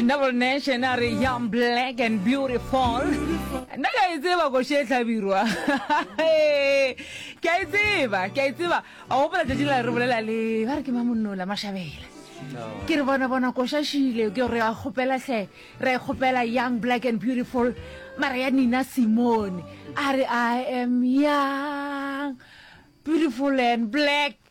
Double Nation a re young black and beautiful nna ke a e tseba koši e tlhabirwa ke a e tseba ke a e tseba a gopola tšatši la re bolela le ba re ke ba monnola mašabela ke re bona bona koša šile ke re a kgopela hle re e kgopela young black and beautiful mara ya nina simone a re i am young beautiful and black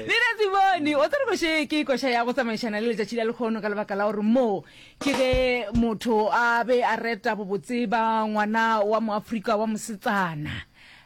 lena tsebone o tsere koše ke koša ya go tsamaišana le letšatši la lekgono ka lebaka la gore moo ke ge motho a be a reta bobotse ba ngwana wa moafrika wa mosetsana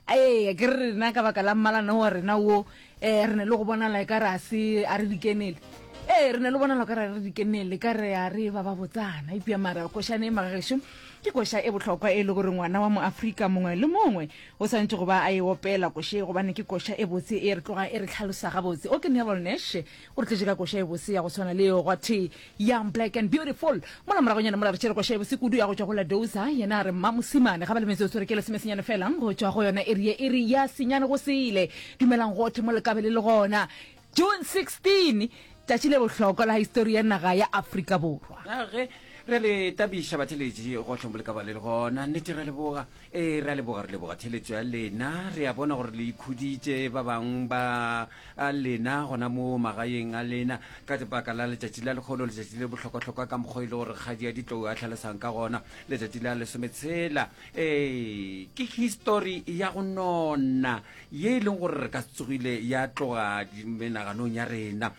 ee ke re rena ka baka la mmalana wa rena wo um re ne le go bonala e ka re a se a re dikenele ee re ne le bonala ka ra re dikenele ka re a re ba ba botsana epja mara košane e magageso ke koša e bohlokwa e le gore ngwana wa moafrika mongwe le mongwe O swanetše go ba a e opela koša ye gobane ke koša e botse e re tloga e re tlhalosa gabotse. O ke Neville Nash, o re tletše ka koša e botse ya go swana le eo gwathee Young, Black and Beautiful. Mola moragonyana mola re tšere koša e botse kudu ya go tšwa go La Doza, yena a re, Mma Mosimane, ga ba le metsotso re kele semesenyane fela go tšwa go yona iri ye e re ya senyane go sele. Dumelang gothe mo le kabele le gona. June 16, Tšatši le bohlokwa la histori ya naga ya Afrika Borwa. A ge re le tabiša batheletši gohle mo le ka ba le le gona, nnete re a leboga, ee, re a leboga, re leboga theletšo ya lena. Re a bona gore le ikhuditše ba bang ba a lena gona mo magaeng a lena ka lebaka la letšatši la lekgolo, letšatši le bohlokwahlokwa ka mokgwa e le gore Kgadi ya Ditlou a hlalosang ka gona, letšatši la lesometshela. Ee, ke histori ya go nona ye e leng gore re ka se tsogile ya tloga menaganong ya rena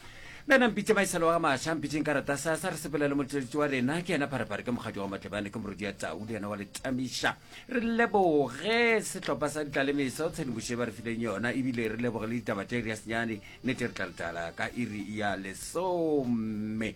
nna na mpitse maisalo wa ga maša mpitseng ka rata sa sa re sepelele motšweletši wa rena ke yena pharepare ke mokgadi wa matlebane ke morodi ya tau le yena wa letamiša re leboge sehlopha sa ditlalemesa o tshedimoše ba re fileng yona ebile re leboge le ditaba tše re ya senyane nete re tla letala ka iri ya lesome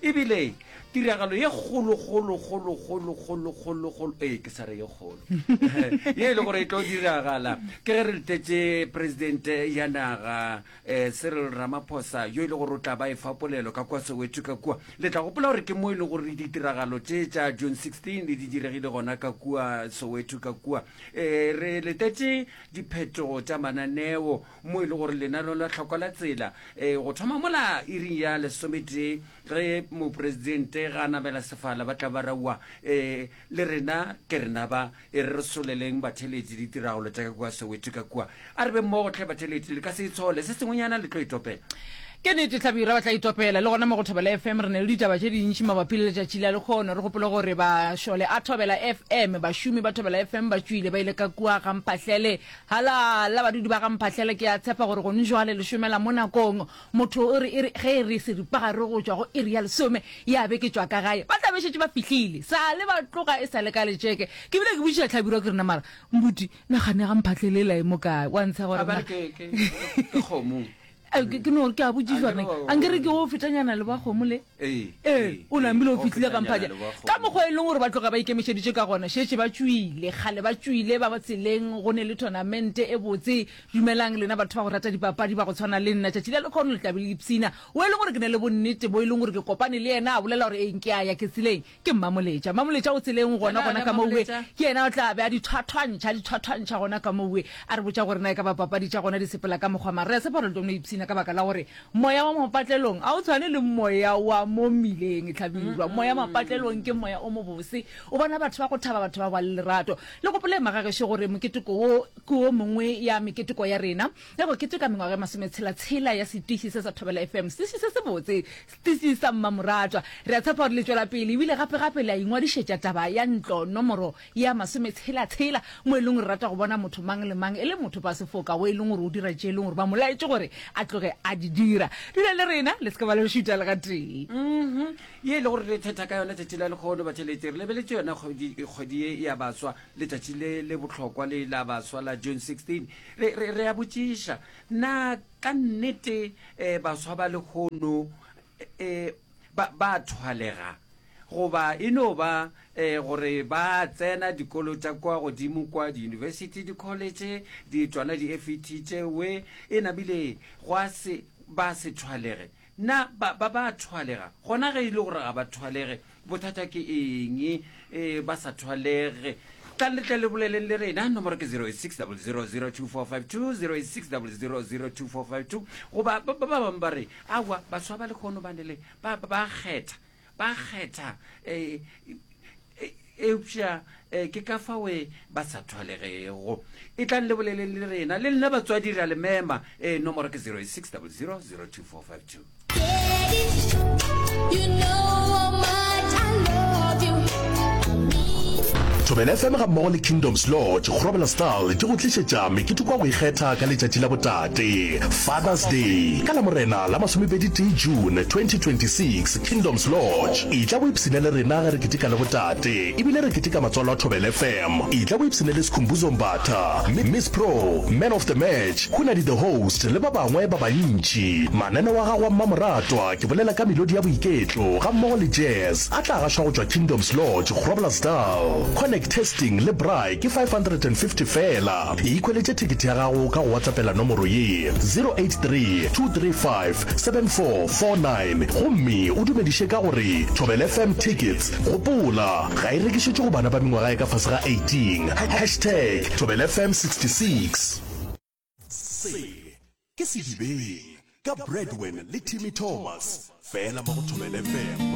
E bile tiragalo ye kgolo, kgolo, kgolo, kgolo, kgolo, kgolo, kgolo, ee, ke sa re ye kgolo, ye e le gore e tlo diragala ke ge re letetse presidente ya naga eh, Cyril Ramaphosa, yo e le gore o tla ba e fa polelo ka kwa Soweto ka kua. Le tla gopola gore ke mo e le gore ditiragalo tše tša June 16 le di diregile gona ka kua Soweto ka kua. Eh, re letetse diphetogo tša mananeo mo e le gore lenaneo la tlhoko la tsela um go thoma mola iring ya lesometee ge moporesidente ga a namela sefala ba tla ba raua um le rena ke rena ba e re re soleleng batheletši ditiragalo tša ka kua soweto ka kua a re be mmogo tlhe batheletši le ka se itshole se sengwenyana le tlo itopela ke nete tlabira ba tla itopela le gona mo go thobela fm re na le ditaba tše dintši mabapi le letšatši la lekgono re gopole gore ba šole a thobela fm bašomi ba thobela fm ba tšwile ba ile ka kua ga mphahlele Hala la badudi ba ga Mphahlele, ke a tshepa gore gone jwale le šomela mo nakong. Motho o re e re ge e re seripagare go tšwa go iri ya lesome ya be ke tšwa ka gae, ba tla be šetše ba fihlile. Sa le ba tloga e sa le ka letšeke, ke bile ke botšiša Hlabirwa ke re, Na mara, mbuti, nagane ya ga Mphahlele e la e mo kae? Wa ntsha gore na. A ba re ke, ke, ke kgomo. Eh, ke no ke a botšišwa Ankere nna wa- a nkere ke o fetanyana le bakgomo le Ee, ee o nambile o o fitlhile ka fetanyana mphaja le bakgomo. ka mokgwa e leng gore ba tloga ba ikemišeditše ka gona šetše ba tšwile kgale ba tšwile ba ba tseleng go ne le tournamente e botse dumelang lena batho ba go rata dipapadi ba go tshwana le nna tšatši la lekgono le tlabe le ipsina o e leng gore ke ne le bonnete bo e leng gore ke kopane le yena a bolela gore eng ke a ya ke tseleng Ke Mmamoletša. Mmamoletša o tseleng gona gona ka mowe. Ke yena o tla be a di thwathwantšha, di thwathwantšha gona ka mowe. A re botša gore na e ka ba papadi tša gona di sepela ka mokgwa mang. Re a tshepa gore le tlo no ipshina ka baka la gore moya wa mapatlelong ga o tshwane le moya wa mo mmileng, Hlabirwa. Moya mapatlelong ke moya o mobose. O bona batho ba go thaba, batho ba ba le lerato. Le gopole, Magagešo, gore moketeko wo ke wo mongwe ya meketeko ya rena ya go keteka mengwaga e masometshela-tshela ya setiši se sa Thobela FM, setiši se sebotse, Tisisa, mmamoratwa. Re a tshepa gore le tšwela pele e bile gape-gape le a ingwadišetša taba ya ntlo nomoro ya masometshela-tshela, mo e leng gore re rata go bona motho mang le mang e le motho ba sefoka wo e leng gore o dira tše e leng gore ba mo laetše gore a tloge a di dira. Dula le rena, le se ke ba le re šuta le gatee. Mmhum, ye e le gore re thetha ka yona tšatši la lekgono, batheletši, re lebeletše yona kgwedi, kgwedi ye ya baswa, letšatši le le bohlokwa le la baswa la June 16. Re, re, re a botšiša, Na Ka nnete, baswa ba lehono ba ba a thwalega, goba e no ba gore ba tsena dikolo tša kwa godimo kwa, diyunibesithi, dikholetše, di tšona di-FET tše we, e nabile gwa se ba se thwalege Na ba, ba, ba a thwalega? Gona ge e le gore ga ba thwalege, bothata ke eng e ba sa thwalege? Tlang le tle le boleleng le rena. Nomoro ke 06002452, 06002452. Goba ba, ba, ba bangwe ba re, Aowa, baswa ba lekgono ba ne le, ba, ba, ba a kgetha. Ba kgetha, e, e, eupša e, ke ka fawe ba sa thwalegego. E tlang le bolele le rena, le nna batswadi re a le mema. E, nomoro ke 08600024522. Thobela FM ga mmogo le Kingdoms Lodge go robela style di go tlišetša mekete kwa go ikgetha ka letšatši la botaki. Tee, Father's Day, ka Lamorena la masomepedi-tee June 2026, Kingdoms Lodge. Etla o ipshine le rena ge re ketika le botate ebile re ketika matswalo a Thobela FM. Etla o ipshine le Skhumbuzo Mbatha, Miss Pro, Man of the Match, Khunadi the Host le ba bangwe ba bantši. Mananeo a gago a mmamoratwa, ke bolela ka melodi ya boiketlo gammogo le jazz, a tla gašwa go tšwa Kingdoms Lodge, Groblersdal. Connect, testing le braai ke 550 feela. Ikhweletše thekete ya gago ka go watlapela nomoro ye, 0832357449 gomme o dumediše ka go re, Thobela FM Tickets, gopola, ga e rekišetšwe go bana ba mengwaga e ka fase ga 18. Hashtag Thobela FM 66. Se ke Sedibeng ka Bradwin le Timmy Thomas, fela mo go Thobela FM.